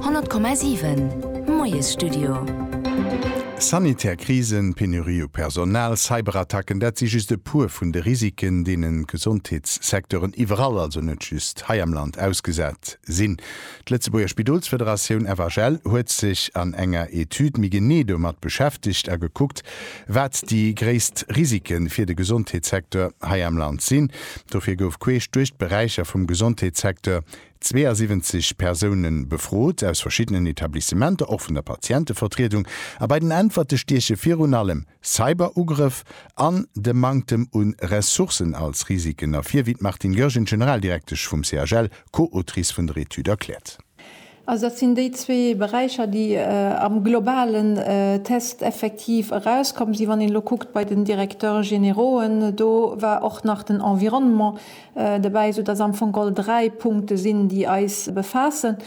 100,7 Moiesstudio. Sanitär Krisen, Penurie u Personal, Cyberattacken, dat si just e puer vun de Risiken, deenen d'Gesondheetssecteuren iwwerall, also net just hei am Land, ausgesat sinn. D'Lëtzebuerger Spidolsfederatioun, FHL, huet sech an enger Etüd méi genee domat beschäftegt a gekuckt, Wat déi gréisst Risike fir de Gesondheetssecteur hei am Land sinn, dofir gouf queesch duerch d'Beräicher vum Gesondheetssecteur 72 Persoune befrot, aus verschiddenen Etablissementer, och vun der Patientevertriedung. A bei den Äntwerte stieche virun allem Cyberugrëff an de Manktem u Ressourcen als Risiken ervir, wéi d'Martine Goergen, Generaldirektesch vum CHL, Co-Autrice vun der Etüd, erkläert. Also dat sinn déi zwee Beräicher, déi am globalen Test effektiv erauskomm sinn. Wann een elo kuckt bei den Directeurs générauxen, do war och nach den Environnement dobäi, esoudass am Fong all dräi Punkte sinn, déi eis befaassen.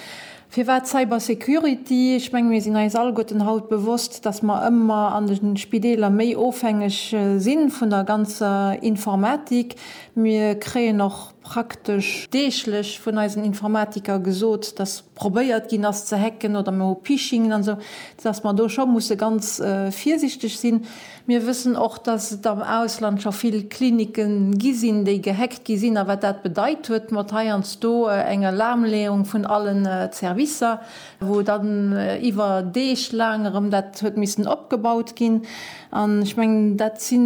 Firwat Cybersecurity? Ech menge mir sinn eis alleguerten haut bewosst, dass mer ëmmer an de Spideeler méi ofhängeg si vun der ganzer Informatik. Mir kréien och. praktesch deeglech vun eisen Informatiker gesot, dass probéiert ginn ass ze hacken oder mer hu Phishingen an esou, dass mer do scho musse ganz virsichteg sinn. Mir wëssen och, dass et am Ausland scho vill Klinike gi sinn, déi gehackt gi sinn a wat dat bedeit huet mat heiansdo eng Alarmleeung vun allen Servicer. wou dann iwwer Deeg laang erëm dat huet missen opgebaut ginn, an ech mengen, dat si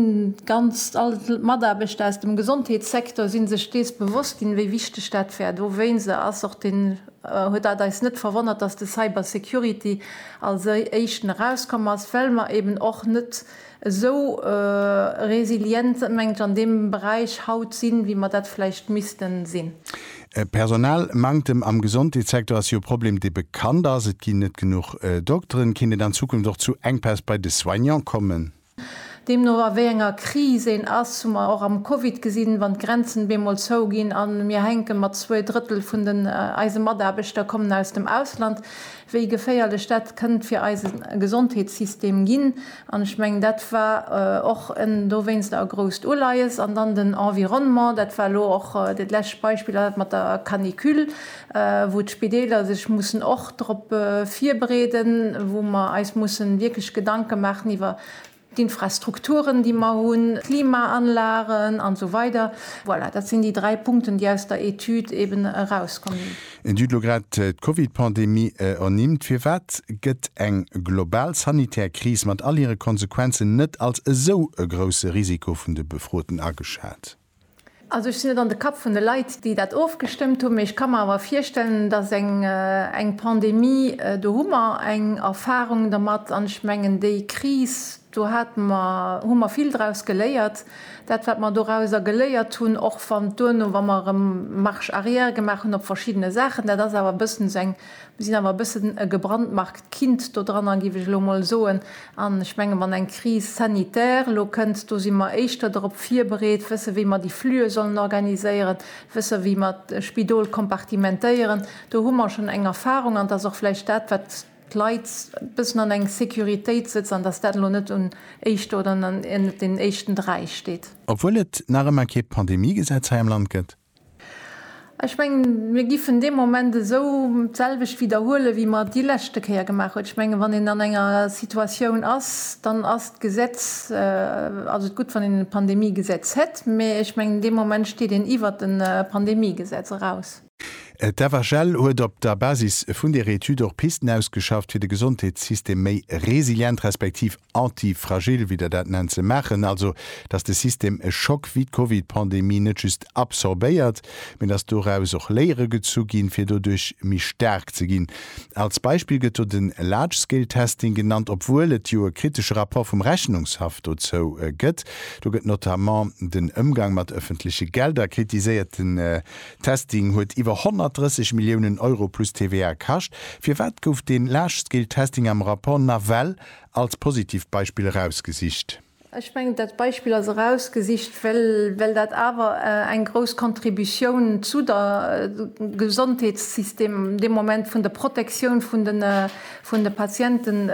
ganz all d'Mataarbechter aus dem Gesondheetssektor si sech dees bewosst ginn, wéi wichteg dat war. Dowéinst ass och den, huet dat eis net verwonnert, dass de Cybersecurity als éischten erauskomm ass, well mer eeben och net, esou resilient mengt ech an deem Beräich haut sinn, wéi mer dat vläicht missten sinn. E Personalmanktem am Gesondheetssektor ass jo e Problem, dee bekannt ass. Et ginn net genuch Dokteren. Kéint et an Zukunft och zu Enkpäss bei de Soignant kommen? Deemno a wéi enger Kris een ass, hu mer och am Covid gesinn, wann d'Grenzen bemol zou ginn a mir hänke mat zwee Drëttel vun den eise Mataarbechter kommen aus dem Ausland, wéi geféierlech dat kënnt fir eise Gesondheetssystem ginn, an ech mengen, dat war och dowéinster e grousst Uleies. An dann den Environnement, dat war elo och dat lescht Beispill, dat mat der Canicule, wou d'Spideeler sech mussen och drop virbereeden, wou mer eis mussen wierklech Gedanke maachen iwwer d'Infrastrukturen, déi mer hunn, d'Klimaanlagen an esou weider. Voilà, dat sinn déi dräi Punkten, déi aus der Etüd eben erauskomm sinn. Et hutt elo grad d'Covid-Pandemie ernimmt. Firwat gëtt eng global sanitär Kris mat all hire Konsequenzen net als esou e grousse Risiko vun de Befroten ageschat? Also ech sinn net an de Kapp vun de Leit, déi dat ofgestëmmt hunn, mee ech ka mer awer virstellen, dass eng eng Pandemie, do hu mer eng Erfahrung dermat an ech mengen déi Kris, do hate mer, hu mer vill draus geléiert. Dat wat mer dorauser geléiert hunn, och wann duerno, wa mer erëm Marche arrière gemaach hunn op verschiddene Saachen, dat ass awer e bëssen esou eng sinn awer e bëssen e gebrandmarkt Kind do dran an, géif ech elo emol soen, an ech menge wann eng Crise sanitaire elo kënnt, do si mer éischter dorop virbereet, wësse wéi mer déi Flüe sollen organiséieren, wësse wéi mer d'Spidol kompartimentéieren, do hu mer schonn eng Erfahrung an et ass och vläicht dat wat d'Leit e bëssen an eng Sécuritéit sëtzt an datt dat elo net un éischter oder net un den éischten dräi steet. Obwuel et nach ëmmer kee Pandemiegesetz hei am Land gëtt, Ech mengen, mir giffen dee Moment esou d'selwecht widderhuelen, wéi mer et déi leschte Kéier gemaach hunn. Ech mengen, wann een an enger Situatioun ass, dann ass d'Gesetz, ass et gutt, wann een e Pandemiegesetz hätt, mä ech mengen, dee Moment steet een iwwert e Pandemiegesetz eraus. D'FHL huet op der Basis vun där Etüd och Pisten ausgeschafft, fir de Gesondheetssystem méi resilient respektiv anti-fragile, wéi Der dat nennt, ze maachen, also datt de System e Schock wéi d'Covid-Pandemie net just absorbéiert, mee datt doraus och Léiere gezu ginn, fir doduerch méi staark ze ginn. Als Beispill gëtt do de Large-Scale-Testing genannt, obwuel et jo e kritesche Rapport vum Rechnungshaff dozou gëtt. Do gëtt notamment den Ëmgang mat ëffentleche Gelder kritiséiert. Den Testing huet iwwer 130 Milliounen Euro plus TVA kascht. Firwat gouf dee Large-Scale-Testing am Rapport nawell als positiivt Beispill erausgesicht. Ech mengen, dat Beispill ass erausgesicht, well dat awer eng grouss Contributioun zu der Gesondheetssystem, deem Moment vun der Protektioun vun de Patienten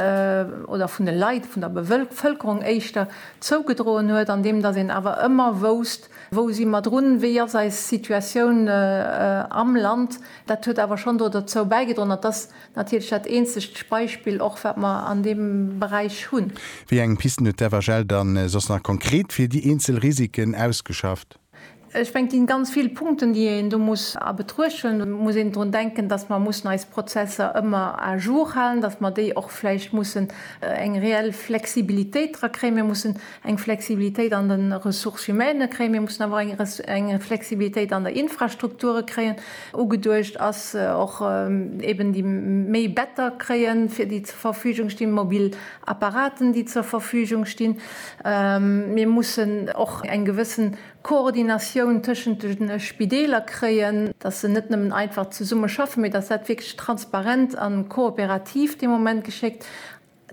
oder vun de Leit, vun der Bevëlkerung éischter, zougedroen huet, andeem datt een awer ëmmer wousst, Wou si mer drun? Wéi ass eis Situatioun am Land? Dat huet awer schonn do derzou bäigedroen, datt Natierlech dat eenzegt Beispill och, wat mer an deem Beräich hunn. Wéi eng Pisten huet d'FHL dann soss nach konkret fir déi eenzel Risiken ausgeschafft? Ech mengen, et ginn ganz vill Punkten, déi een do muss a Betruecht huelen. Et muss een drun denken, dass mer mussen eis Prozesser ëmmer à jour halen, dass mer déi och vläicht mussen eng reell Flexibilitéit dra kréien. Mir mussen eng Flexibilitéit an de Ressources humaines kréien, mir mussen awer och eng Flexibilitéit an der Infrastrukture kréien. Ugeduecht ass och eeben déi méi Better kréien, fir déi zur Verfügung stinn, mobil Apparaten, déi zur Verfügung stinn. Mir mussen och eng gewëssen Koordinatioun tëschent de Spideeler kréien, dass se net nëmmen einfach zesumme schaffen, mee dass dat wierklech transparent a kooperativ dee Moment geschéckt.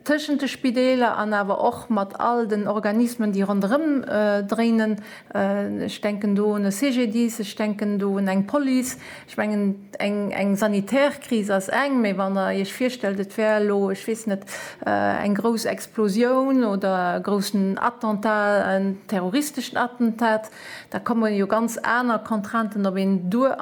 tëschent de Spideeler an awer och mat all den Organismen, déi ronderëm dréinen. Ech denken do un e CGDIS, ech denken do un eng Police. Ech mengen, eng sanitär Kris ass eng, mä wann Der Iech virstellt, et wär elo, ech weess net, eng grouss Explosioun oder e groussen Attentat, en terroristeschen Attentat, da komme jo ganz aner Contrainten op een duer.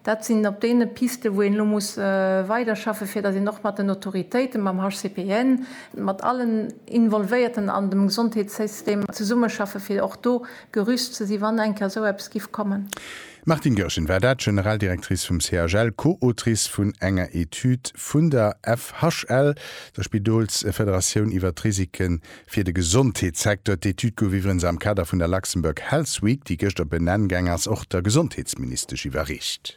Dat sinn op deene Pisten, wou een elo muss weiderschaffe fir datt een och mat den Autoritéiten, mam HCPN, mat allen Involvéierten an dem Gesondheetssystem zesummeschaffe fir och do gerüst ze si wann eng Kéier esou eppes giff kommen. D'Martine Goergen war dat, Generaldirectrice vum CHL, Co-Autrice vun enger Etüd vun der FHL, der Spidolsfederatioun, iwwer d'Risike Fir de Gesondheetssecteur, d'Etüd gouf iwwerens am Kader vun der Luxembourg Health Week, déi gëschter benenn gaang ass, och der Gesondheetsministesch iwwerreecht.